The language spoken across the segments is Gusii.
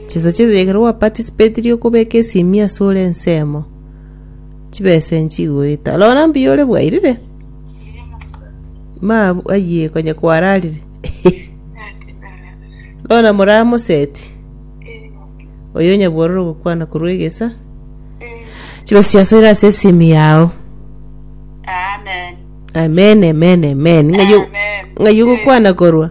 Chisacha chiaito ekero gwa participatirie okobeka esimi ase ore ensemo, chibesa echi chigoeta. Rora mbuya ore bwairire. Ma ayie konya kwararire. Rora moramoseti. Oyo nyabwororo gokwana korwa egesa. Chibesa chia soira ase esimu yao. Amen, amen, amen. Ng'ayo ng'ayo gokwana korwa.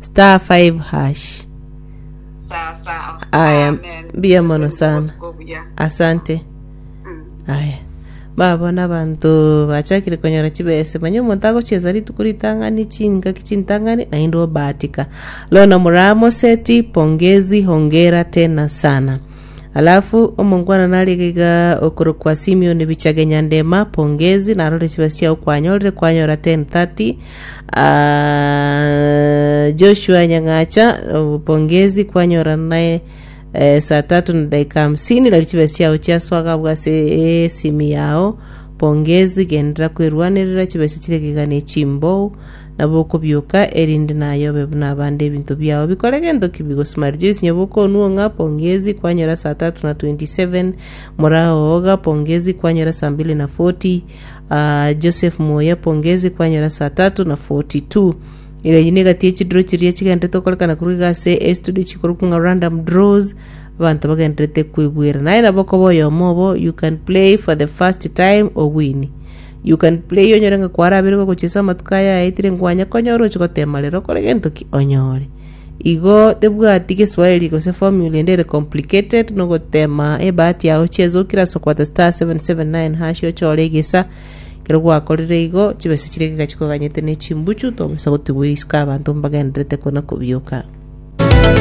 star 5 hash sasa aya amen mbuya mono Asante sana botuko buya. asante aya babona abanto bachakire konyora chibese manye omonto agochiesa rituko ritang'ani chingaki chintang'ani naende obahatika lona muramo seti pongezi hongera tena sana Alafu omongwana nari iga iga okorokwa Simioni bichage Nyandema pongezi narore chiba chiao kwanyorire kwanyora 1030 Ah, Joshua Nyang'acha oh, pongezi kwanyora naye eh, saa tatu na dakika hamsini nari chiba chiao chiaswaga abwo ase esimi yao pongezi gendera kwerwanerera chibesa chire giga ne chimbou Nabo okobioka, erinde nayobe buna abande ebinto biao bikore gento ki bigosmari Joyce Nyabuoka Onuong'a, pongezi, kwanyora saa tatu na 27, Moraa Ooga, pongezi, kwanyora saa mbili na 40, ah, Joseph Muya, pongezi, kwanyora saa tatu na 42. Iga eyio nigo egati echidro chiria chigenderete gokorekana korwa iga ase estudio chikorokwa ng'a random draws abanto bagenderete kwebwera naye nabo okoba oyomo obo you can play for the first time owini You can play onyore ng'a kwarabeire gogochia ase amatuko aya ayaetire nkwanye konyora oche gotema rero okore gento ki onyore. Igo tebwati geswahili gose formula ende ere complicated no gotema ebahati yao cheze okire ase okwata star 779 hash ochore egesa ekero gwakorire igo chibesa chiria geka chikoganyete ne chimbuchu tomisa gotigwa isiko abanto mbagenderete kona kobioka.